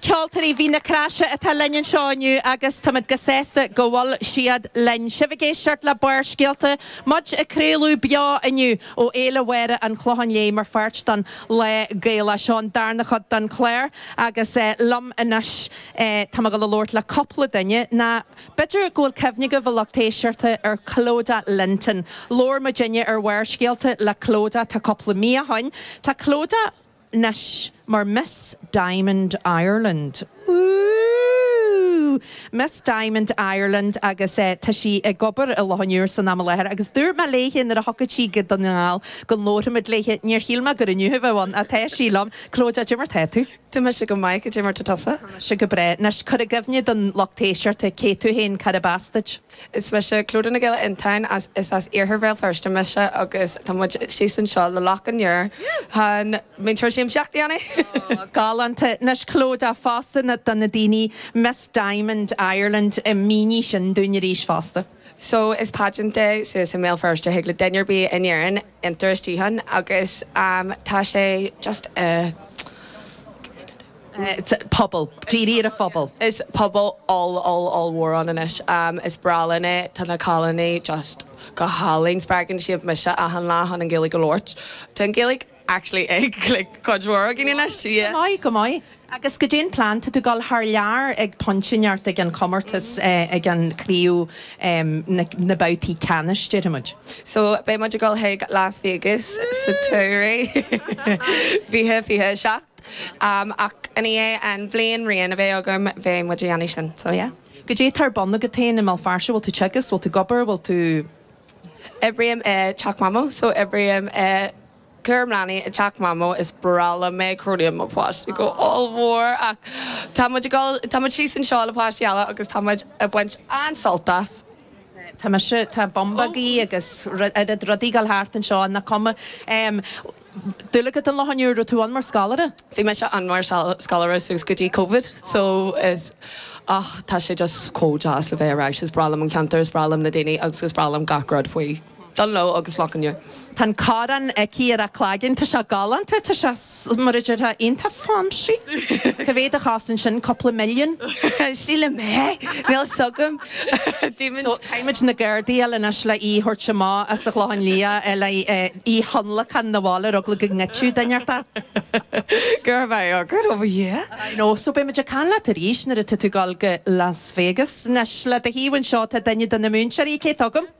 Ceoltóirí Mhín na Croise atá linn anseo inniu agus tá muid breá sásta go bhfuil siad linn. Tá sibh ag éisteacht le Barrscéalta, muid ag craoladh beo inniu ó Fhéile Mhéaraí an Chlocháin Léith mar pháirt don Lá Gaelach. Seo an darna chuid den chlár agus liom anois tá mé ag gabháil a labhairt le cúpla duine agus b'fhéidir go bhfuil cuimhne agaibh a lucht éisteachta ar Clodagh Linton. Labhair muidinne ar Bharrscéalta le Clodagh tá cúpla mí ó shoin. Tá Clodagh. anois mar Miss Diamond Ireland. Wúúúú! Miss Diamond Ireland agus eh tá sí ag obair i Loch an Iúir san am i láthair agus dúirt mé léithe nuair a thiocfadh sí go Dún na nGall go labharfadh muid léithe, níor shíl mé gur inniu a bheadh ann ach tá sí liom. Clodagh, cad é mar tá tú? Tá mise go maith, cad é mar atá tusa? Tá mise go breá. Anois, cuir i gcuimhne don lucht éisteachta cé tú féin, cá as duit? Is mise Clodagh Nic Giolla Fhionntáin, is as Iarthar Bhéal Feirste mise agus tá muid síos anseo le Loch an Iúir chun múinteoir siamsaíochta a dhéanamh! Oh, galánta. Anois, Clodagh, fosta na, do na daoine, Miss Diamond Ireland, eh, mínigh sin dúinn arís fosta. So, is pageant é suas i mBéal Feirste, thig le duine ar bith in Éirinn, iontráil isteach ann agus tá sé just pobal, dírithe ar an phobal. Tá pobal oll-oll-ollmhór ann anois. Is breá liom é. Tá na cailíní just go hálainn. Spreagann siad mise achan lá chun an Ghaeilge a labhairt. Tá an Ghaeilge actually ag like cuid mhór againn anois. Yeah. Go maith, go maith. Agus cad é an plean atá, ag dul thar lear ag pointe inteacht ag an chomórtas, ag an chriú, na babhtaí ceannais, déarfaimid. So beidh muid ag dul chuig Las Vegas sa tsamhradh, fiche, fiche a seacht. I ndiaidh an bhliain reign a bheidh agam, beidh muid ag déanamh sin. So yeah. Cad é tá ar bun agat féin i mBéal Feirste, bhfuil tú ag teagasc, bhfuil tú ag obair, bhfuil tú. Oibrím i dTeach Mhamó, so oibrím i. cúram leanaí i dTeach Mhamó, is breá liom é, cronaím mo pháistí go hollmhór ach tá muid ag dul, tá muid síos anseo le páistí eile agus tá muid ag baint an-sult as. Tá mise, tá bumbag-aí agus oiread rudaí ag dul thart anseo, ach is cuma. Bulaí, agus Loch an Iúir, raibh tú ann mar scolaire? Bhí mise ann mar scoláire suas go dtí Covid so is, ah tá sé just chomh deas a bheith ar ais, is breá liom an ceantar, is breá liom na daoine agus is breá liom gach rud faoi. Bulaí, agus mar a deir. Tá an choróin aici ar a cloigeann. Tá sé galánta, tá sé, mar a déarfá, iontach fancy. Cá mhéad a chosain sin, cúpla milliún? Sílim é. Níl 's agam. So, caithfimid na gardaí a fháil anois le í a thabhairt amach as an gClochán Liath le í a thionlacan 'na bhaile ar eagla go ngoidfeadh duine ar bith é, yeah, get over here. I know, so beidh muid ag caint leat arís nuair atá tú ag dul go Las Vegas. Anois, le do thaobh anseo tá duine de na múinteoirí, cé atá againn?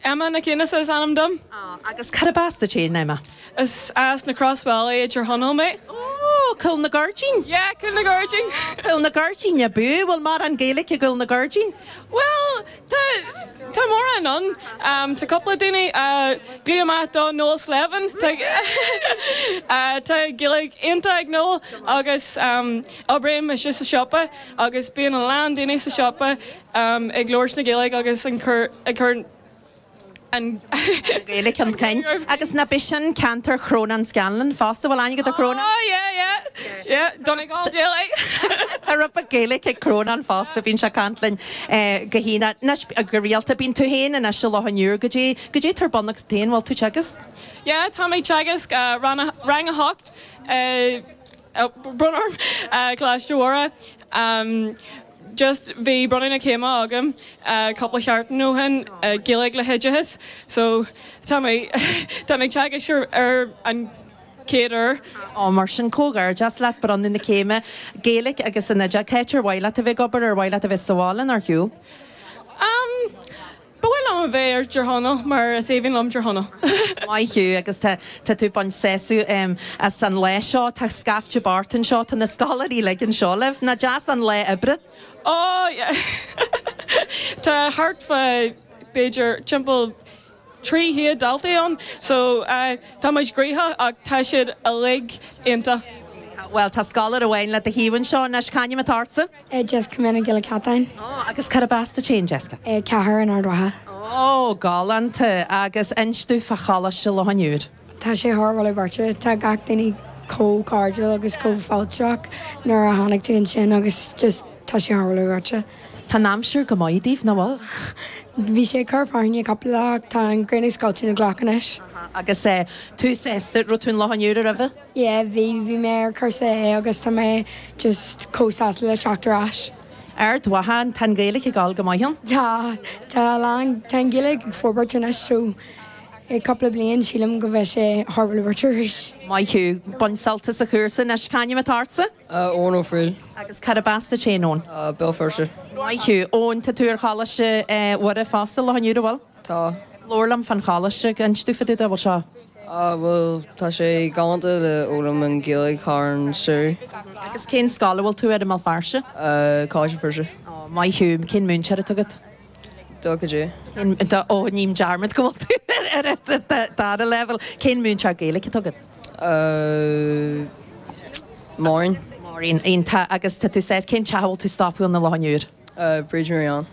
Emma Nic Aonghusa is ainm dom. Ah, agus cad ab as duit fhéin, Emma? Is as na Croisbhealaí i dTír Chonaill mé. Oh, Cúil na gCuirridín? Yeah, Cúil na gCuirridín. Cúil na gCuirridín ab fhiú? Bhfuil mórán Gaeilic i gCúil na gCuirridín? Bhuel, tá, tá mórán ann. Tá cúpla daoine á gcloí amach do Noel Slevin. Tá, tá Gaeilg iontach ag Noel agus oibríonn mise sa siopa agus bíonn a lán daoine sa siopa. ag labhairt na Gaeilge agus ag cur na Gaeilge chun cinn. Agus nach b'shin ceantar Chrónáin Scanlán fosta? Bhfuil aithne agat ar Chrónán? Ó yeah, yeah, yeah, Donegal Gaeilge! Tá rabharta Gaeilge ag Crónán fosta, bíonn sé ag caint linn go han, go rialta. Bhuel tú féin anois i Loch an Iúir, goidé, goidé atá ar bun agat féin, bhfuil tú teagasc? Yeah, tá mé ag teagasc rang a hocht. bainim sult as Coláiste Mhuire just bhí bronnadh na céime agam cúpla seachtain ó shin i nGaeilge le hoideachas so tá mé tá mé ag teagasc ar an chéad uair. Á, mar sin, comhghairdeas leat, bronnadh na céime, Gaeilge agus an Oideachas. Cáit, ar mhaith leat a bheith ag obair, ar mhaith leat a bheith sa bhaile, nó ar shiúl? Am. Ba mhaith liom a bheith i dTír Chonaill mar is aoibhinn liom Tír Chonaill. Maith thú agus tá tá tú ag baint sásamh em as an lá seo. Tá scaifte thart anseo. Tá na scoláirí uilig anseo libh. Nach deas an lá oibre? Ó yeah tá thart fá b'fhéidir timpeall trí chéad daltaí ann so eh tá muid gnóthach ach tá siad uilig iontach. Bhuel tá scoláire amháin le do thaobh anseo. Anois, c'ainm atá ortsa? Jessica Nic Giolla Chatáin. Ó, agus cad ab as duit fhéin, Jessica? An Chéide in Ard Mhacha. Ó, galánta. Agus inis domh fá Choláiste Loch an Iúir. Tá sé thar barr. Tá gach duine chomh cairdiúil agus chomh fáilteach nuair a tháinig tú ansin agus just tá sé thar barr. Tá an aimsir go maith daoibh, nach bhfuil? Bhí sé ag cur fearthainne cupla lá ach tá an ghrian ag scoilteadh na gcloch anois. Agus tú, Sester, raibh tú i Loch an Iúir aroimhe? Yeah, bhí, bhí mé ar chúrsa A agus tá mé just chomh sásta le teacht ar ais. Ard Mhacha, tá an Ghaeilge ag dul go maith ann? Tá, tá a lán, tá an Ghaeilge ag forbairt anois so i gcúpla bliain sílim go mbeidh sé ag forbairt arís. Maith thú, bain sult as an chúrsa anois. C'ainm atá ortsa? Eoin Ó Frighil. Agus cad ab as duit féin, Eoin? Béal Feirste. Maith thú. Eoin, tá tú ar Choláiste Mhuire fosta Loch an Iúir, an bhfuil? Tá. Labhair liom fán choláiste, inis domh fá dtaobh de seo. Ah, bhuel, tá sé galánta le foghlaim na Gaeilge thar an samhradh. Agus cén scoil a bhfuil tú air i mBéal Feirste? Coláiste Feirste. Oh, maith thú. Cén múinteoir atá agat? Duke J. Oh, ním dearmad go bhfuil tú ar dara leibhéal. Cén múinteoir Gaeilge atá agat? Máirín. Máirín. Tá, agus tá tú saghas, cén teach a bhfuil tú stopadh ann i Loch an Iúir? a Bhríd Mhic Riain.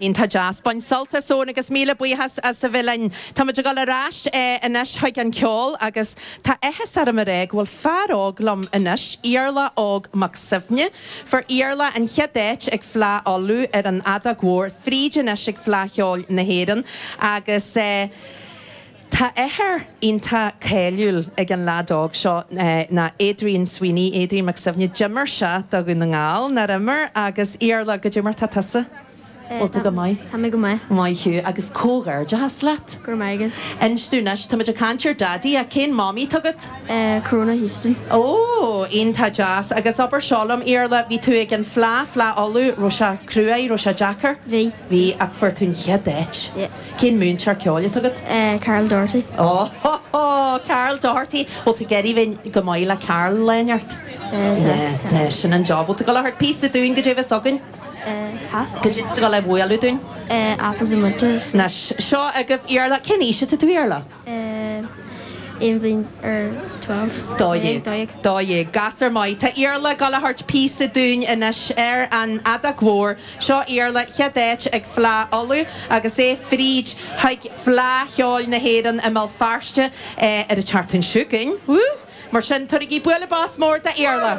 Iontach deas. Bain sult as Eoin agus míle buíochas as a bheith linn. Táimid ag dul ar ais anois chuig an cheol agus tá áthas orm a rá go bhfuil fear óg liom anois, Iarla Óg Mac Suibhne, fuair Iarla an chéad áit ag Fleá Uladh ar an fheadóg mhór fríd anois ag Fleá Cheoil na hÉireann agus. Tá athair iontach cáiliúil ag an leaid óg seo ná Adrian Sweeney, Adrian Mac Suibhne. D'imir sé do Dhún na nGall, nár imir? Agus Iarla goidé mar tá tusa? Bhfuil tú go maith? Tá mé go maith. Maith thú agus comhghairdeachas leat. Go raibh maith agat. Inis domh anois, táimid ag caint ar Daidí, ach cén Mamaí atá agat? Corona Houston. Ó, iontach deas. Agus abair seo liom, Iarla, bhí tú ag an fhleá, Fleá Uladh, raibh sé cruaidh, raibh sé deacair? Bhí. Bhí, ach fuair tú an chéad áit. Yep. Cén múinteoir ceoil atá agat? Carl Doherty. Óóóó! Carl Doherty! Bhuel, tá tú ag dul ar aghaidh go maith le Carl, lán ceart. Yeah, tá. Sin an job. Bhuel, tá tú goil a thabhairt píosa dúinn, goidé a bheas againn. Tá. Goidé tá tú goil a bhualadh dúinn. Apples in Winter. Anois, seo agaibh Iarla. Cén aois atá tú, Iarla? aon bhliain ar twelve. Dó dhéag. Dó dhéag. Dó dhéag. Gasúr maith. Tá Iarla goil a thabhairt píosa dúinn anois ar an fheadóg mhór. Seo Iarla chéad áit ag Fleá Uladh agus é fríd chuig Fleá Cheoil na hÉireann i mBéal Feirste ar an tseachtain chugainn. Woo! Mar sin, tabhairigí bualadh bos mór d'Iarla.